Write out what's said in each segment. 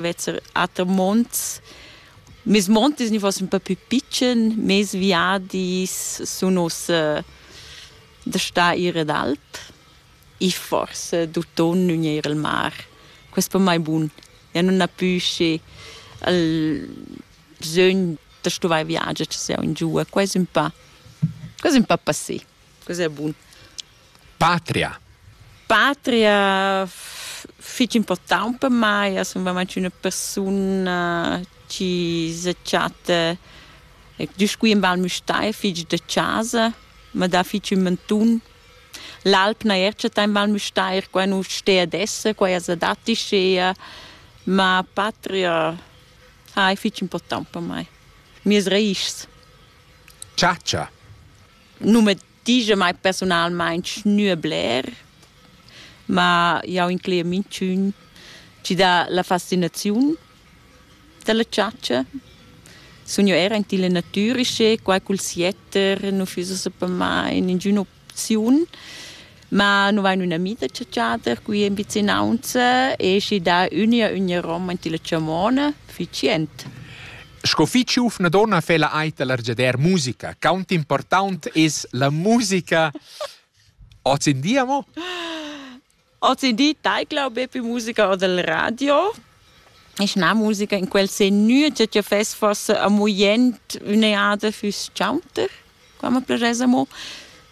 vezer ater monts. Mes montis ni fossen un peu più pitschen, mes viadis sun ussa da sta ir ad alp e forse d'autunn nun ir al mar. Quest per mai bun. Ja nun ha pü schi il bisögn da stuvai viagiar, che sia un giù. Quai es ün pa, quai es ün pa passé. Quest è bun. Patria. Patria fich important per mai, as sun veramein üna persun-na chi se chatta güst qui in Val Müstair fich da chasa, ma dà fich ün mantun. L'alp n'haja eir chattà in Val Müstair, quai nu stea ad esser, quai esa dat ischea, ma patria ha es fich important per mai. Mieas raïschs. Chatscha. Numer Dice mai personalmein schnür bler, ma jau incleia minchün chi dà la fascinaziun da la chatscha. Sun io era in tilla natüra sche quai cul sietter nu füss esa per mai ingün'opziun. Ma nu vain ün'amica chatschader qui in vicinaunza e schi dà üna üna roman tilla chamona, fich jent. Sco fich giuvna donna fa la Aita l'argiader musica. Quant important es la musica oz in dia mo? Oz in di taicla be musica o del radio. Ist eine Musiker in quel sen nie che fes forse a muient üne Art fürs Chaunter. Qua ma plaschass amo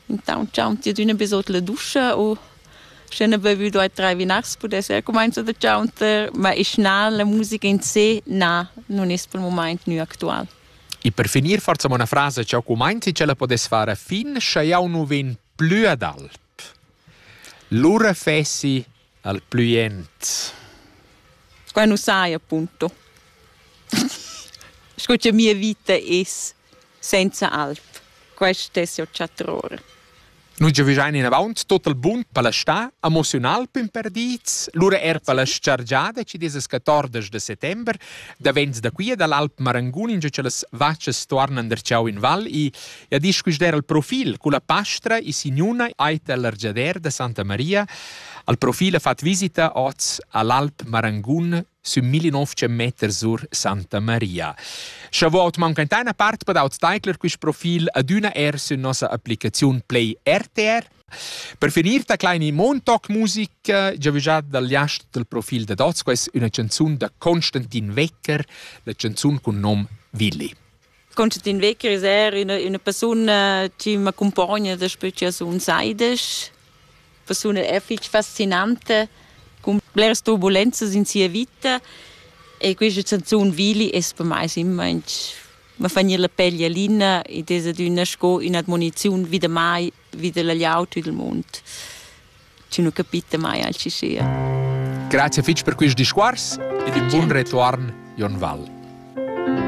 intaunt ch'aun ti adüna be sot la duscha u sche n'ha bevü due, tre vinars pudess eir cumainzo da chaunter, ma isch na, la musica in se, na, nun es pel mumaint gnü actual. E per finir forsa una frasa cha cumainzi ch'ella podess far a fin, scha jau nu vegn plü ad alp. Lura fessi al plü jent. Squai nu sai appunto. Sco cha mia vita es senza alp, quest es jo chatr'ora. Nu giavüschain inavant tot il bun palastà, emoziunal pimperdiz, lura er palaschargiada ci dieses 14 de settember, davents da quia dall'Alp Marangun, ingio cha las vachas tuornan darcheu in val e E disquisder il profil con la pastra e signuna ait all'argiader da Santa Maria. Al profil ha fatg visita oz all'Alp Marangun sün 1900 meter sur Santa Maria. Scha vot manca in teina part per aut steigler quist profil adüna er sün nossa applicaziun Play RTR. Per finir ta kleine Montag Musik, già già dal jast del profil da Dots, quais üna canzun da Konstantin Wecker, la canzun cun nom Willi. Constantin Weckers è una, una persona che m'accompagna daspö che sun saides. Persona è fich fascinante, con bleras turbulenzas in sia vita e questa canzone Vili es per mai simmainch ma fa gnir la pel jalina ed es adüna sco ün'admoniziun vida mai, vida la gliaut ed il mund, chi nu capita mai alchi sia. Grazie fich per quist discours ed un bun retuorn, Jon Val.